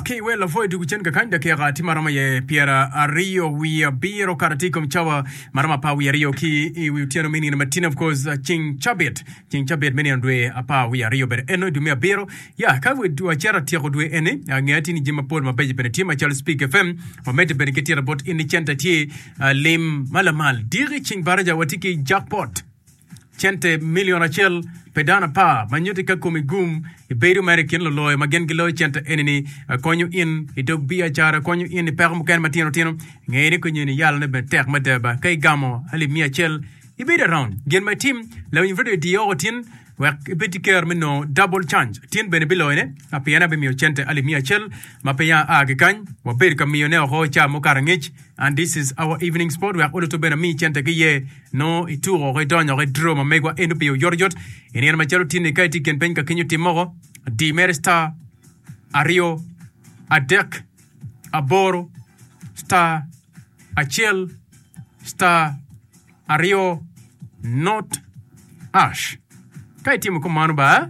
Ki iwel lapwony tugo cen kakany dakika tye ma romo iye pyeraryo wiye abiro kato atir i kom cawa ma romo apar wiye aryo ki i wi otyeno me nino matino of course ceng cabit ceng cabit me nino dwe apar wiye aryo bene eno i dwe me abiro ya ka wacito atyeko dwe eni ange atir ni jami mapol mabeco bene tye macalo speak fm wamedde bene ki tira bot in ni centa tye lim ma lamal diki ceng baraja watye ki jackpot Cente milion acel pi dano apar ma nyuti ka komi gum ibedo mere i kin luloyo ma gin giloyo cente eni-ni konyo in i dog biacara, konyo in i peko mukene matino tino. Ngeye ni konyo in iyalone bene tek mada ba ka igamo alip miya acel ibedo around. Gin ma itim, lawiny redio iti oko tin wek ibed ki ker me nongo double change. Tin bene biloyone ma pien abimiyo cente alip miya acel ma peya aa ki kany wabedo ka miyone oko i ca mukato angec. And this is our evening sport wek oluto bene mi cente ki ye no i tuko ki donyo ki draw ma megwa eno piyo yot yot i nino ma calo tinni ka iti ken peny ka kinyo tim moko di mere star aryo adek aboro star acel star aryo not ash ka itimo ko mano ba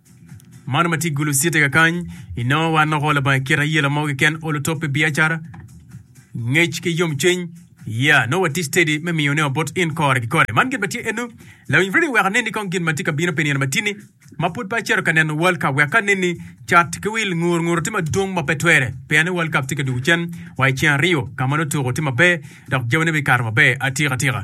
Mano ma tye gulu citi kakany, i nongo wa noko labang i kite aye lamogi ken olo top pi biacara, ngec ki yom cwiny, ya nongo wa tye steady me miyo ne wa bot in kore ki kore. Man gin ma tye enu, lawiny radio weka neni kong gin ma tye ka bino pi nino matini ma pud pe acero ka neno World Cup weka neni cat ki wil ngur nguro tye madwong ma pe twere pien ni World Cup tye ka dugo cen wa i ceng aryo ka ma notuko tye maber dok jami ne bikato maber atika tika.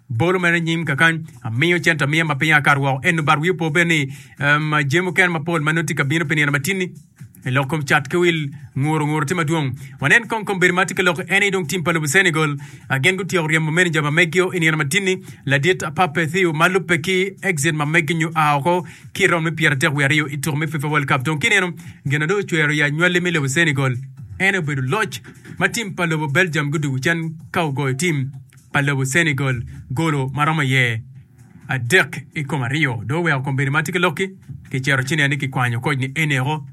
Bolo mere nyim kakany, amiyo cente amiya ma piny akato woko. Eno bat wiye opo bene ni um, jami mukene mapol ma nongo tye ka bino pi nino matinni i lok kom cat ki wil nguro nguro tye madwong. Wanen kong kom bedo ma tye ka lok en aye dong tim pa lobo Senegal ah, gin gutyeko ryemo meneja ma meggio i nino matinni ladit ah, Pape Thiaw ma lubbe ki exit ma meggi nyo a oko ki i raund me pyeratek wiye aryo i tuko me FIFA World Cup. Dong kineno gin ma dong ocwero ya nywali me lobo Senegal en aye obedo loc ma tim pa lobo Belgium gudwogo cen ka ogoyo tim pa lobo Senegal golo ma romo iye adek i kom aryo dong oweko kom bedo ma tye ki lokki. Kicito ci nen ni kikwanyo koc ni Enero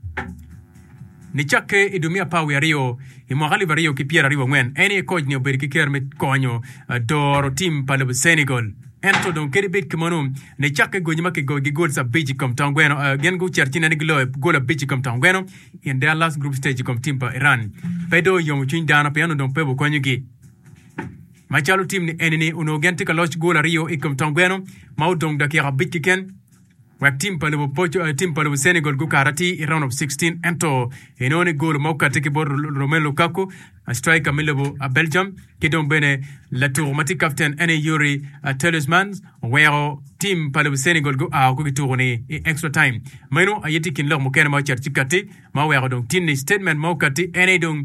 ni cakke i dwe me apar wiye aryo i mwaka alip aryo ki pyeraryo wangwen. En aye koc ni obedo ki ker me konyo doro tim pa lobo Senegal. Ento dong kadi bed kamano ni cakke gonye ma kigoyo gi gols abic i kom tong gweno, gin gucito ci nen ni giloyo gol abic i kom tong gweno in their last group stage i kom tim pa Iran pe dong oyomo cwiny dano pien onongo dong pe wukonyogi. Macalo tim ni eni ni onongo gen tye ka loc gol aryo i kom tong gweno ma odong dakika abic kiken wek tim pa lobo poco eh, tim pa lobo Senegal gukato ati i round of 16 ento inongo ni gol ma okati ki bot Romelu Lukaku a striker me lobo a Belgium ki dong bene latuko ma tye captain ene Yuri ah, Talismans oweko tim pa lobo Senegal gua woko ki tuko ni i extra time. Meno aye tye i kin lok mukene ma ocito ci kati ma oweko dong tin ni statement ma okati ene dong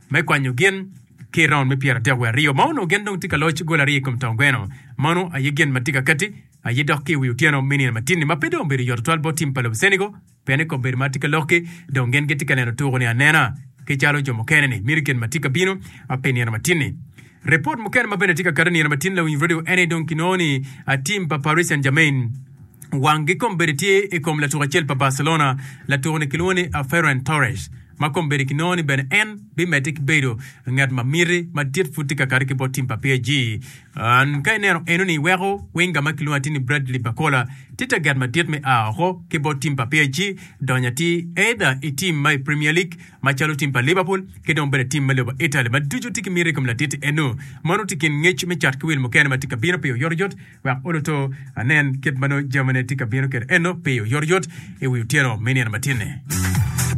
me kwanyo gin ki i raund me pyera dek wiye aryo ma onongo gin dong tye ka loc gol aryo i kom tong gweno. Mano aye gin ma tye ka kati aye dok ki i wi otyeno me nino matin-ni ma pe dong obedo yot tutwal bot tim pa lobo Senegal pien i kom bedo ma tye ka lok-ki dong gin gitye ka neno tuku-ni anena ki calo jo mukene-ni mito gin ma tye ka bino pi nino matin-ni. Ripot mukene ma bene tye ka kati i nino ma tin lawiny redio ene dong kinongo ni tim pa Paris Saint-Germain wanggi kombeddi tye i kom latuk acel pa Barcelona, latuk-ni kilwongo ni Ferran Torres, ma kombeddi kinongo ni bene en bimedde ki bedo ngat ma miti madit pud tye ka kati ki bot tim pa PSG. Ka ineno enoni iweko winga ma kilwongo atir ni Bradley Barcola tye taget madit me a oko ki bot tim pa PSG donyo atir either i tim ma i Premier League macalo tim pa Liverpool ki dong bene tim me lobo Italy ma ducu tye ki miti i kom latiti eno. Mano tye i kin ngec me cat ki wil mukene ma tye ka bino piyo oyotoyot wek oluto anen kit ma nongo jamine tye ka bino kwede eno piyo oyotoyot i wi otyeno me nino matinni.